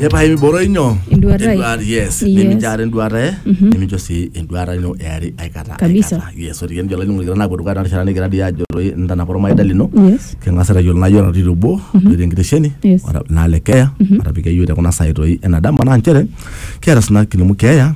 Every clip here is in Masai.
epae miboro inyo Enduata ai. Enduata- yes Yes. nimijaare enduata e nimincho sii enduata ino eari aikata Kabisa. aikata. yes ore kijo olainining'oni likira naapuo dukuya tena rishata nikigira dii aajo doi ntanapa ormaida lino yes king'as aitayiolo naa yiolo natii obo doi tenkitesheni Yes. ora- naa le keeya atapika yiok te kuna saai toi ena dama naa nchere kiata sina kilimu keeya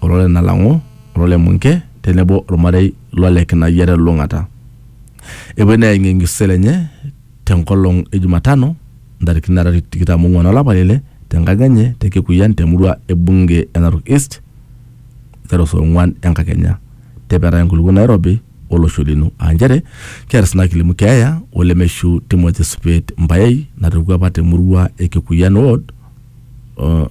olole Nalang'u, olole Munke tenebo olmarei lole Kinayia te Lulung'ata. Epuoi neeng'iyeng Msisele enye te nkolong e Jumatano ntarikini are tikitam ong'uan o lapa le ile te nkang enye te Kikuyian te murua e bunge e Narok East aiteru saa ong'uan enkakenya. Tepetaa enkulukuoni nairobi o losho lino aa nchere keeta sina kilimu keeya o lemeishu Timothy Supet Mbayei natoiwuo apa te murua e Kikuyian ward o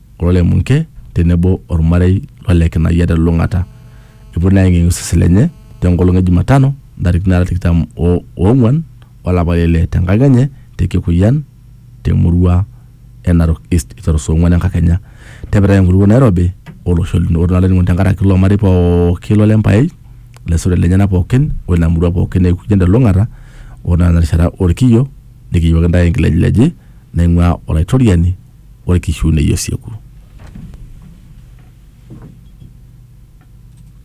Kulo le Munke tenebo olmarei lo Lekinayia te lulung'ata epuo naa aeng'ieng'ie osesen lenye te nkolong e Jumatano ntarikini naara tikitam o oong'uan o lapa le ile te nkang enye te Kikuyan te murua e Narok East eiteru saa ong'uan enkakenya te pirai enkutukuo Nairobi o losho lino. Ore naa olainining'oni te nkaraki ilo marei pooki lo Lempaei, ilaisotuak lenyena pooki o ina murua pooki e Kuyian te lulung'ata ore naa tena rishata o lkiyio nikiyiewaki intae enkilejileji naing'uaa Olaitoriani olkishiunei osieku.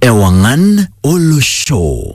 Ewang'an olosho.